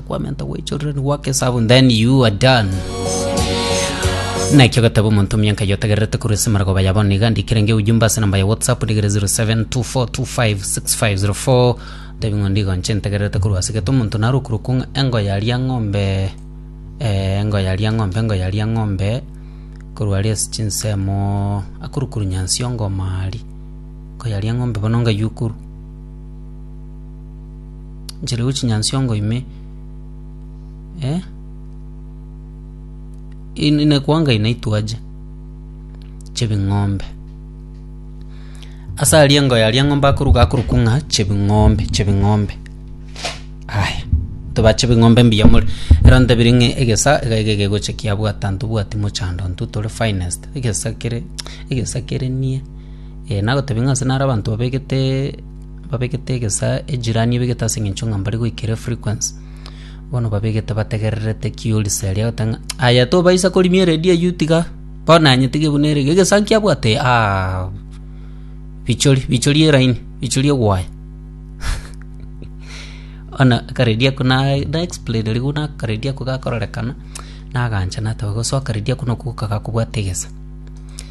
Kwamenta gwe children work is up and then you are done. Nakio gatabo omonto mianka yotagererete korwa ase marago baya bono iga ndikire nge ujumbe ase namba ya WhatsApp ndigere 0724256504 tebi ng'o ndigo nche ntegererete korwa ase gete omonto narokure kong'a engo yaria ng'ombe eh, engo yaria ng'ombe engo yaria ng'ombe korwa ari ase chinsemo akorokuru nyansi ongomari engo yaria ng'ombe bono ngayukuru Nchirigwe chinyansongo ime, eh? In- Inekwanga inaitwaje chebing'ombe ase aria engo yaria ng'ombe akoruga akorokwa ng'a chebing'ombe chebing'ombe aya toba chebing'ombe mbuya more ero ntebiri ng'a egesa iga iga egegocha kiabwata ntobwati mochando intwe tore finest egesa kere egesa kerenie eh nagotebia ng'a ase naro abanto babegete. babegete egesaa ejirani ebegete ase eng'encho ng'a mbare goikera efrequency. Bono babegete bategererete ki Olisa eria agoteba ng'a aye tobaisa korimia eredio eyio tiga bono aye tiga buna ere iga egesaa nki abwate aa bichori bichori eraini bichori egwaya. Bono akaredio ako na na explain riwu na akaredio ako gakororekana nagancha nateba gose akaredio ako noko goka gakobwate egesa.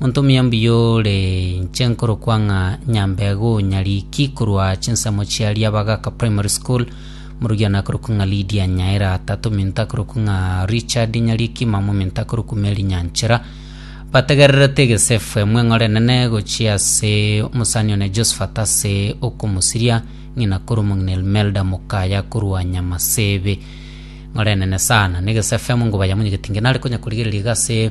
Monto omuya mbuya ore inche nkorokwa ng'a Nyambego Nyariki korwa chinsemo chia Riabagaka Primary School, morugi one akorokwa ng'a Lydia Nyaira, tata ominto akorokwa ng'a Richard Nyariki, mama ominto akorokwa Mary Nyanchera. Bategererete egesefu emo eng'ora enene gochia ase omosani one Josephat ase okomosiria ng'ina korwa omong'ina Elmelda Mokaya korwa Nyamasebe. Eng'ora enene sana, na egesefu emo ngobayamonyegetie ngenare konya korigereria iga ase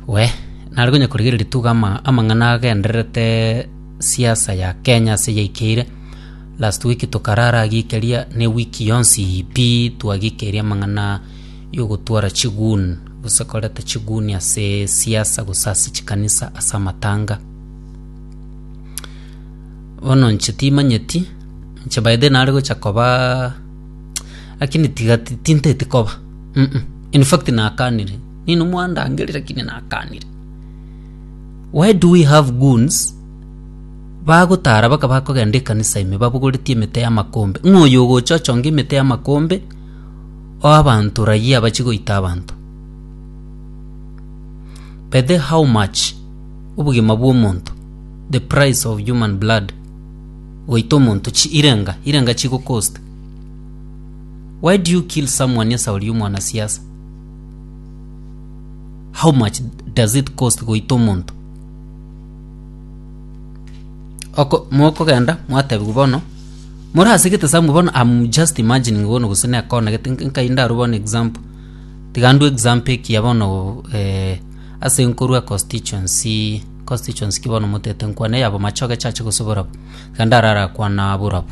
Wee, nare konya korigereria ritugo ama- amang'ana agendererete siasa ya Kenya ase yaikeire, last week tokarara agiikeria na ewiki yonsi pi twagikeria amang'ana ya ogotwara chigun gose koreta chigun ase siasa gose ase chikanisa ase amatanga. Bono inche timanyeti, inche by the way nare gocha kobaa lakini tiga ti- tinteti koba uh uh. In fact nakanire. Nino mwandangerire lakini nakanire. Why do we have goons bagotara baka bakogenda ekanisa ime babogoretie emete y'amakombe ng'a oyo ogocha ochonge emete y'amakombe oe abanto rayia abachi goita abanto. By the how much obogima bw'omonto the price of human blood goita omonto chi irenga irenga chigokosta. Why do you kill someone nesa oria omwana siasa? How much does it cost goita omonto? Oko mokogenda mwatebiwa bono morasigete samu bono I'm just imagining bono gose nekona gete nkainda aro bono example. Tiga ndwe example ekiya bono eh, ase nkorwa constituency constituency ki bono motete nkwane yabo machoge chache gose borabu. Tiga ndarara kwana borabu.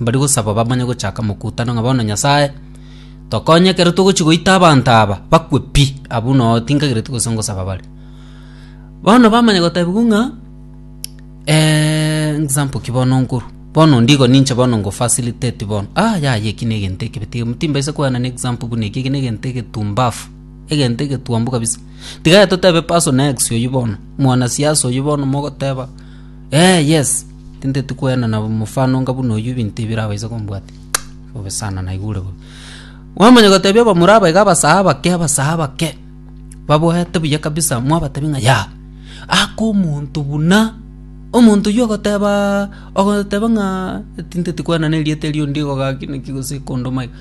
Mbari gosaba bamanye gochaka mokutano ng'a bono Nyasae tokonye ekero togochia goita abanto aba bakwe pi. Abwo noo tinkagereti gose ngosaba bare. Bono bamanya gotebiwa ng'a example ki bono nkorwa, bono onde igo ninche bono ngo facilitate bono ah yaya eki na egento ekebe tiga timbaisa koeanana example buna eki, eki na egento egetumbafu, egento egetuambe kabisa. Tiga aye totebe person X oyio bono, mwanasiasa oyio bono mogoteba. Ee, yes, tinteti kwenena mofano onga buna oyio ebinto ebi birabaise kombwatia. Bobe sana, naigure bobe. Bwamanya gotebia abamura aba iga abasae abake, abasae abake, baboete buya kabisa, mwabatebi ng'a ya, aka omonto buna, omonto oyio ogoteba, ogoteba ng'a tinteti kwenena erieta erio onde igo gaki naki gose ekondoma iga.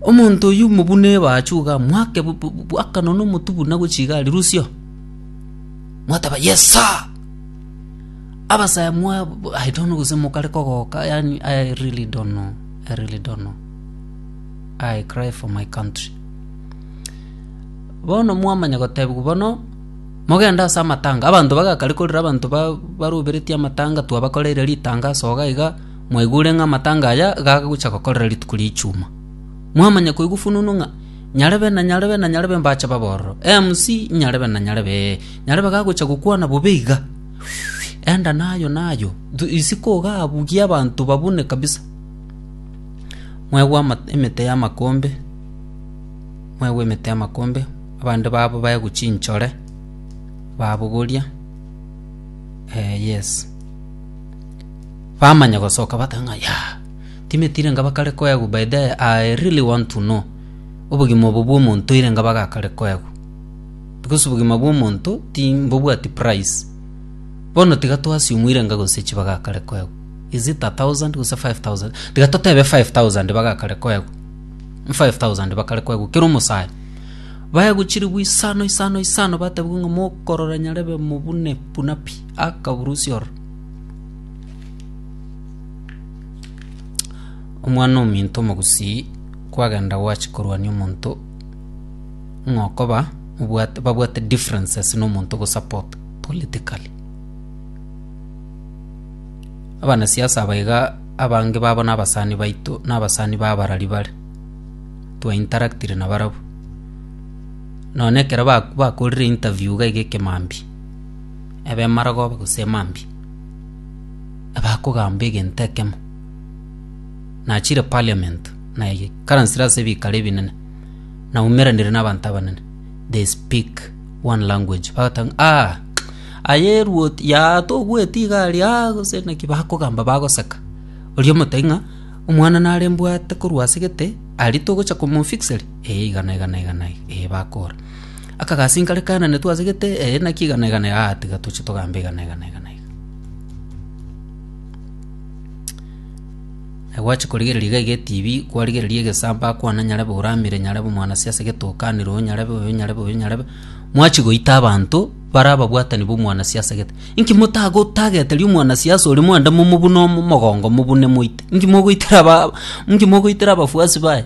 Omonto oyio mobune ebachu iga, mwake bu- bu- bu- bwakano na omotwe buna gochia iga rirusia oo. mwateba yes sir abasaya mwa i don't know gose mokare kogoka yani i really don't know i really don't know i cry for my country bono mwamanya gotebigwa bono mogenda ase amatanga abanto bagakare korira abanto ba- baroberetie amatanga twabakoreire ritanga ase iga iga mwaigure ng'a amatanga aya gagocha gokorera rituko ria echuma mwamanya koigwa fununu ng'a Nyarebe, na nyarebe, na nyarebe mbache babororo, MC, nyarebe, na nyarebe, ee, nyarebe gagochia gokwana bobe iga. Enda nayo, nayo. Thu, isiko iga abwo gie abanto babune kabisa. Mwegwe ama, emete y'amakombe, mwegwe emete y'amakombe, abande babo baegwe chinchore, babogoria, eh, yes. Bamanya gosoka bateba ng'a, yaah. Timeti irenga bakare koegwa by the I really want to know obogima obo bw'omonto irenga bagakare koegwa because obogima bw'omonto ti mbobwati price bono tiga twasiumu irenga gose chi bagakare koegwa is it a thousand gose 5000 tiga totebe 5000 bagakare koegwa 5000 bakare koegwa kero omosae baegwa chiribu isano isano isano batebiwa ng'a mokorora nyarebe mobune buna pi akaburusia ororo Omwana-o-minto omogusii kwagenda gwachi korwania omonto ng'a okoba obwate babwate differences na omonto ogosupport politically. Abanasiasa aba iga abange babo na abasani baito na abasani ba abarari bare, twa interactire na barabwo, nonye ekero ba bakorire interview iga iga ekemambia, ebe emaragoba gose emambia. abakogamba egento ekemo. Nachire parliament, naikaransire ase ebikaro ebinene, naumeranire nabanto abanene, they speak one language, bagoteba ng'a aah aye eruoti yaa tobueti iga aria aah gose naki bakogamba bagoseka. Oria omotebia ng'a omwana nare mbwate korwa asegete, aria togocha komofixeri? Eeh iga na iga na iga na iga, eeh bakora. Akagasinka are Kanani twase gete, ee, naki igana igana iga, aa, tiga toche togambe igana igana igana iga. Na gwachia korigereria iga iga etibi, kwarigereria egesaamba akwane nyarebe ore amire, nyarebe omwanasi ase gete okanire oyo nyarebe oyo nyarebe oyo nyarebe, mwachia goita abanto bare ababwatani b'omwanasi ase gete. Inki motagotageteria omwanasi ase oria mwende momobune omo- mogongo mobune moite? Inki mogoitera aba inki mogoitera abafuasi baye?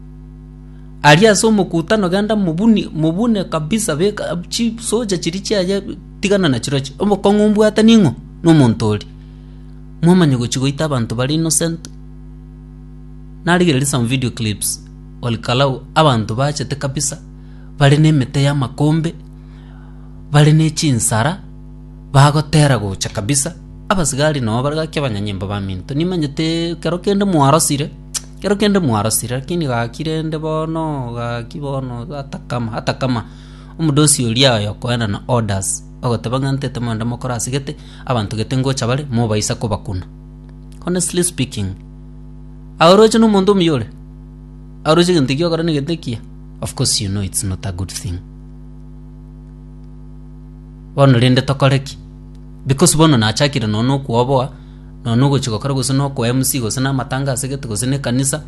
Aria ase omokutano genda mobuni mobune kabisa beka chisocha chiria chiaye tigana na chirochio obokong'u mbwate ning'o na omonto oria momanye gochi goita abanto baria innocent narigereria some video clips olikalau abanto bachete kabisa bare na emete ya amakombe bare na echinsara bagotera gocha kabisa abasigari nabo bagakia abanyanyimbo baminto nimanyete ekero kende mwarosire. Kero kende mwarosire, lakini gaki rende bono, gaki bono, atakama, atakama. Omodosi oria oye okoenda na orders, ogoteba ng'a ntete moende mokore ase gete, abanto gete ngocha bare, mobaisa kobakuna. Honestly speaking, aoroche na omonto omuya ore? Aoroche egento ekio ogokora ne gete ekiya? Of course you know it's not a good thing. Bono rende tokore ki? Because bono nachakire nonya na okwoboa. nonya nogochia gokora gose nokoa MC gose namatanga ase egete gose na ekanisa,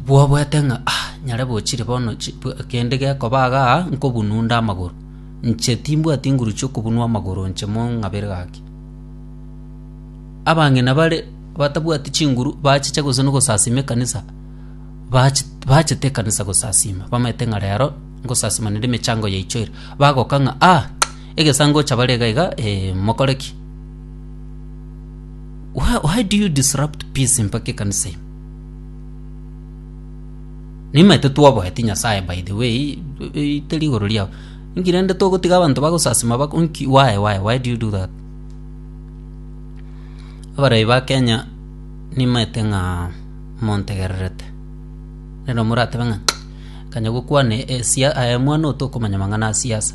bwoboete ng'a ah nyare bochire bono chi bwe kende gekoba igaa nkobunwa onde amagoro. Inche timbwati nguru chia okobunwa amagoro inche mong'abere gaki. Abang'ina bare batabwati chinguru bachiche gose na ogosasima ekanisa, bachi bachete ekanisa gosasima bamaete ng'a rero ngosasima naende emechango yaicho ere, bagoka ng'a ah. Egesaanga gocha bare iga iga, eh, mokore ki? Why, why do you disrupt peace mpaka ekanisa ime? Nimaete twaboeti Nyasaye by the way, eh, teri igoro riao. Inki rende togotiga abanto bagosasima bako, inki, why, why, why do you do that? Abarai ba Kenya nimaete ng'a montegererete. Nero moratebe ng'a kanya gokwana esia, aye mwana otokomanya mang'ana a siasa.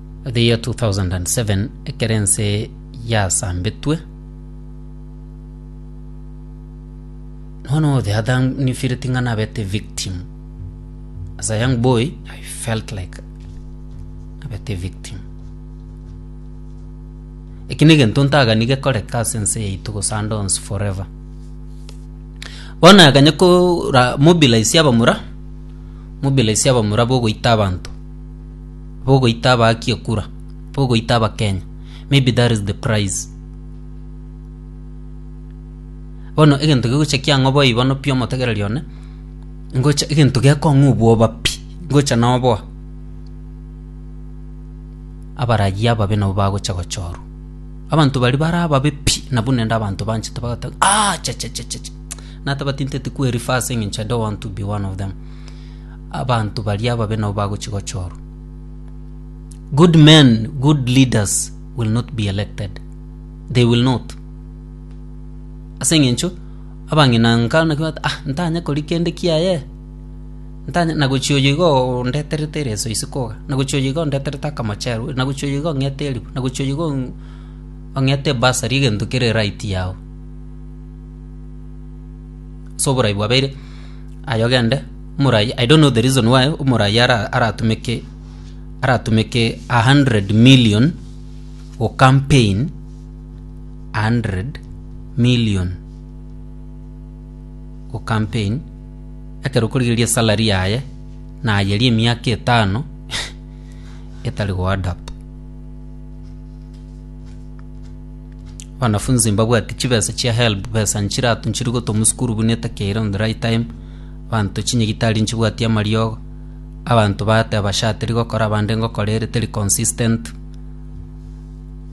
The year 2007, ekero ense yasambetwe, one of the other nifileti ng'a nabete victim. As a young boy, I felt like nabete victim. Eki negento ntagani gekoreka ase ense yaito gose ande onsi forever. Bono naganye kora mobilize abamura, mobilize abamura bogoita abanto. bogoita abaaki ekura, bogoita abakenya. Maybe that is the price. Bono egento gegocha kiang'oboa ibono pi omotegereri one, ngocha egento gekong'u obwoba pi, ngocha noboa. Abaragi ababe nabo bagocha gochorwa. Abanto bari bare ababe pi nabwo nende abanto banchete bagoteba aah chachachachacha. Natabati nteeti kwe refer ase eng'encho I don't want to be one of them. abanto baria ababe nabo bagochia gochorwa. Good men, good leaders will not be elected. They will not. Ase eng'encho abang'ina nka naki bagoteba ah ntanye kori kende kiaye, ntanye nagochi oyo igo ondeterete ereso ise koga, nagochi oyo iga ondeterete akamochero, nagochi oyo iga ong'ete eribu, nagochi oyo iga ong'ete ebursary egento kere right yao. Ase oborai bwabeire. Aye ogende, omoraai, I don't know the reason why omoraai ara- aratumeke aratumeke a hundred million go campaign a hundred million go campaign ekero okorigereria esalary yaye na aye ria emiaka etano etari go add up. Abanafunzi mbabwati chibesa chia helb besa nchiratu nchiri gotoma sukuru buna etakeire on the right time abanto chinyagitari nchibwati amariogo abanto bateba sha teri gokora abande ngokora ere teri consistent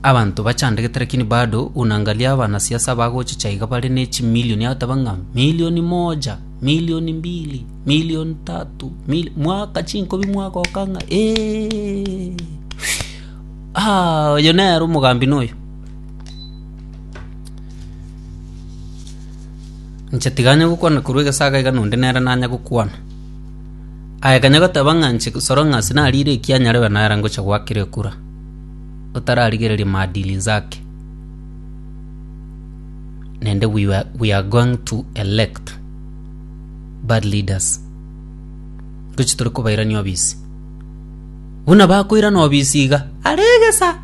abanto bachandegete lakini bado unaangalia abanasiasa abagocha cha iga bare ne chimilioni abateba ng'a milioni moja milioni mbili milioni tatu mil mwaka chinkobi mwagoka ng'a eeeeii. Oyo nere omogambi noyo! Inche tiga anya gokwana korwa egesaga iga nonde nere nanya gokwana. Aye kanya goteba ng'a inche soro ng'a ase narire ekia nyarebe nere ngocha goakera ekura, otararigereria maadili inse ake. Naende we were we are going to elect bad leaders. Ntoche tore kobairania obisi. Buna bakoirana obisi iga are egesa,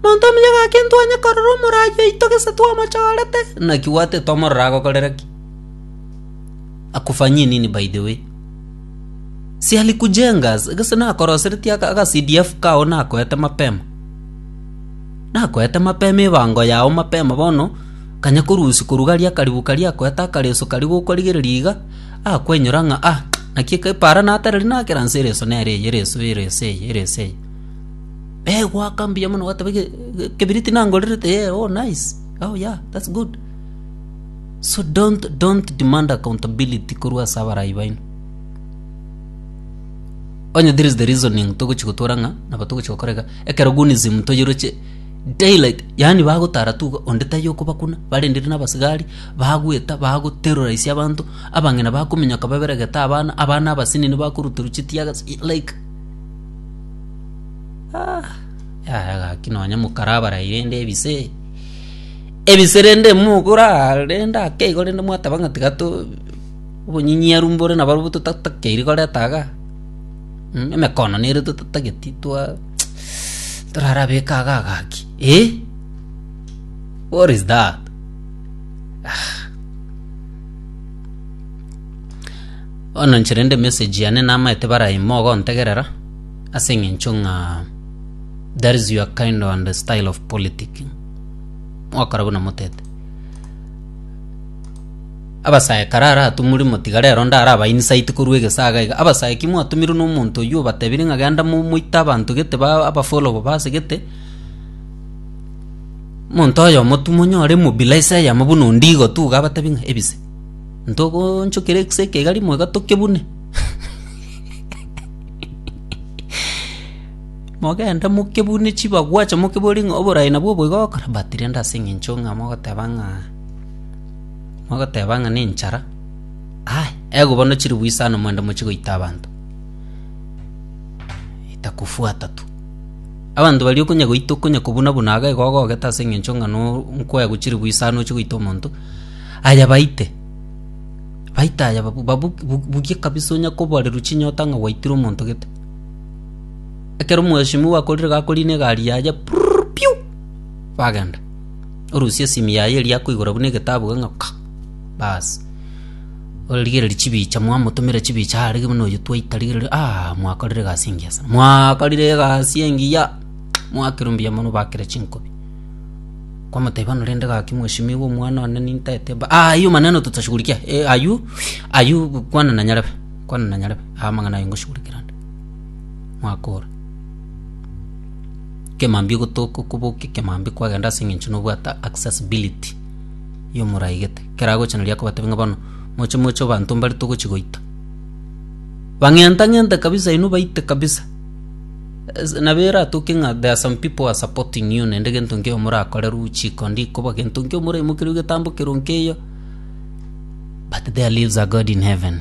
monto omuya gaki ntwanye korora omoraai oito gese twamochorete, naki gwate tomorora agokorera ki? Akufanyie nini by the way? Si alikujenga as- gese nakoroseretie aka aga CDF kao nakoete mapema. Nakoete mapema ebango yao mapema bono kanya korusia korugaria akaribu karia akoete akareso karia gokorigereria iga Akwenyora ng'a ah, naki epaara natereri nakera nse ereso nere eye, ereso eye, ereso eye, ereso eye. Begoaka mbuya mono bateba ge- ge- kebiriti nangorerete yeah, oh nice. Oh yeah, that's good. So don't don't demand accountability korwa ase abarai baino. Onye there is the reasoning togochi gotwora ng'a nabo togochi gokora iga ekero gunism toyiroche daylight yaani bagotara tu iga onde taiyo okobakuna barendire nabasigari Bagweta, bagoterora ise abanto, abang'ina bakominyoka baberegete abana, abana abasinini bakoruterwa chitiaga chi- like Ah, yaya gaki nonye mokarabara rende ebise ebise rende mogora rende ake igo rende mwateba ng'a tiga to obonyinyiaru mbore nabarobwo totatakeiri koreta iga mh emekono nere totatageti twa torarabeka iga gaki eh what is that. Bono inche rende emessage yane namaete baraime ogontegerera ase eng'encho ng'a that is your kind and style of politicking mogokora buna motete. Abasae kare aratumuri motiga rero onde araba insight korwa egesaga iga, abasae ki mwatumirwe na omonto oywo obatebire ng'a genda mo moite abanto gete ba abafollow base gete. Omonto oyomotumo nyore mobila ase eyemo buna ondigo gotuga abatebi ng'a, Ebise, ntogoonchokera egisa eke iga rimo iga tokebune. Mogende mokebune chibagwacha mokiborie ng'a oboraai nabwo obo iga ogokora? But rende ase eng'encho ng'a mogoteba ng'a mogoteba ng'a nenchara aaya ego bono chiribu isano moende mochie goita abanto, itakufuata tu. Abanto baria okonya goita okonya kobuna-buna ago igo ogogete ase engencho ng'a nkwegwa chilifu isano ochie goita omonto, aye baite. Baite aye babu babu bugie kabisa onya koboreru chinyota ng'a gwaitire omonto gete. Ekero omweshimiwa akorire iga akorina egari yaye purururu piu, bagenda. Orusia esimi yaye eria akoigora buna egetabu iga ng'a ka, baas. Origererie chibicha, mwamotomera chibicha aarege buna oyio twaita rigererio, aah mwakorire egasi engiya sana, mwakorire egasi engiya, mwakirwe mbuya mono bakire chinkobi. Kwamotebia bono rende gaki mweshimiwa omwana one nintete ba, aywo maneno tutashugurikia, eh aywo, aywo kwana na nyarebe, kwana na nyarebe, amang'ana aye ngoshugurikia rende, mwakora. Kemambia ogotoka okobokia kemambia kwagenda ase eng'encho nobwate accessibility, ya omoraegete. keragocha nario akobatebia ng'a bono moche moche abanto mbare togochi goita. Bang'enta ng'ente kabisa inwe baite kabisa. Ese- Nabo eratoke ng'a there are some people who are supporting you naende gento nkeiyo morakore ruchi iko ndikoba gento nkeiyo moraimokeru getambo kero nkeiyo but their lives are God in heaven.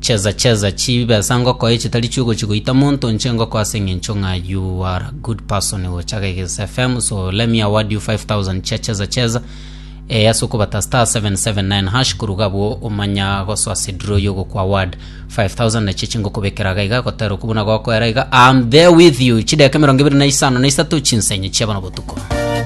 Chesa chesa chibesa ngokoe chitari chiogochi goita monto inche ngokoa ase engencho ng'a you are a good person gocha Geges FM so let me award you 5000 chia chesa chesa eh, ase okobata star 779 hash koruga abwo omanya gosoa ase draw yogoku award 5000 nachio chingokobekera iga iga gotera okwo buna gokoera iga I'm there with you chideka emerongo ebere na isano na isato chinsenyo chiabana botuko